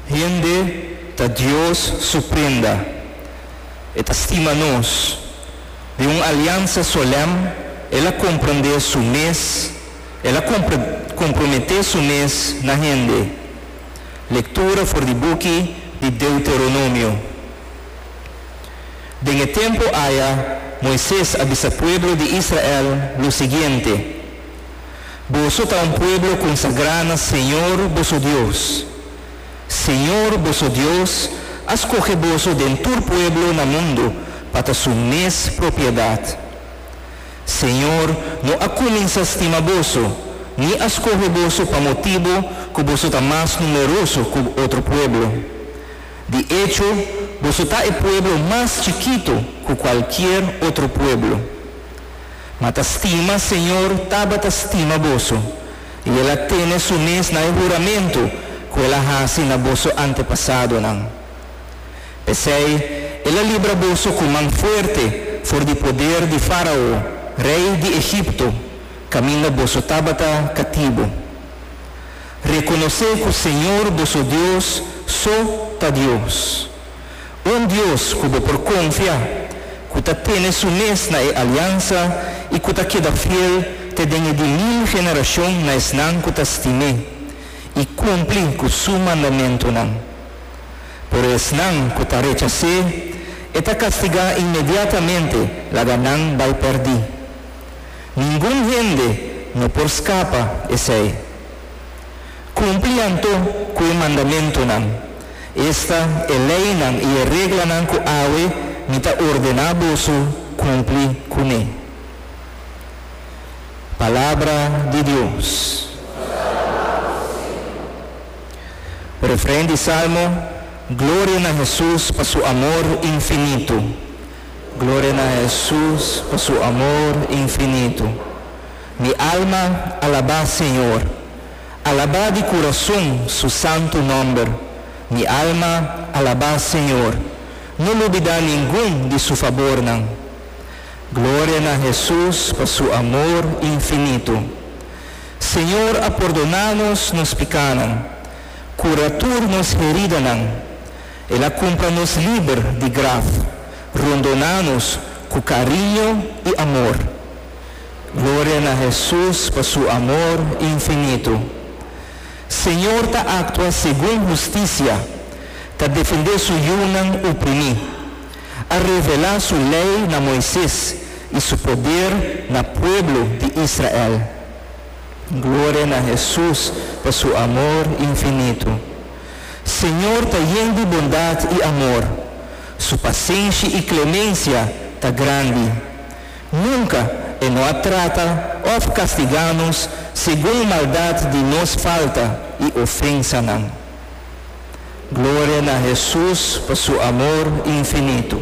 Hende ta Dios su prenda. E ta stima nos. Di un aliansa solèm el a komprendé su mes, el a komprometé su mes na hende. Lektura for di buki di Deuteronomio. Den e tempu aya, Moises a bisa pueblo di Israel lo siguiente. Boso ta un pueblo konsagrá na Señor, boso Dios. Señor, boso Dios, a skohe boso den tur pueblo na mundu pa ta su mes propiedat. Señor no a kuminsá stima boso, ni a skohe boso pa motibu ku boso ta mas numeroso ku otro pueblo. Di echo, boso ta e pueblo mas chikitu ku kualkier otro pueblo. Ma ta stima Señor tabata stima boso, i el a tene su mes na e huramentu ku el a hasi na boso antepasadonan. P'esei el a libra boso ku man fuerte for di poder di Fárao, rei di Egipto, kaminda boso tabata katibu. Rekonosé ku Señor boso Dios so ta Dios. Un Dios cu bo por confia, cu ta tene su mes na e aliansa y cu ta keda fiel te den e di mil generacion na esnan cu ta stim'é y cumpli cu su mandamentonan. Pero esnan cu ta rechac'é, e ta castigá inmediatamente laga nan bai perdi. Ningun hende no por scapa esei. Cumpli anto cu e mandamentonan, esta e leynan y e reglanan cu awe mi ta ordena boso cumpli cu ne. Palabra di Dios. Refren di Salmo, Gloria na Hesus pa su amor infinito. Gloria na Hesus pa su amor infinito. Mi alma alaba Señor. Alabá di kurason su santu nòmber. Mi alma, alabá Señor. No lubidá ningun di su fabornan. Gloria na Hesus pa su amor infinito. Señor a pordoná nos nos pikánan, kura tur nos heridanan. El a kumpra nos liber di graf, rondoná nos ku kariño i amor. Gloria na Hesus pa su amor infinitu. Señor ta actua segun husticia, ta defende su yunan uprimi. A revela su ley na Moises y su poder na pueblo di Israel. Gloria na Hesus pa su amor infinitu. Señor ta yen di bondad y amor, su pasenshi y clemencia ta grandi. Nunca E no a trata of castiga nos segun maldad di nos falta y ofensanan. Gloria na Hesus pa Su amor infinito.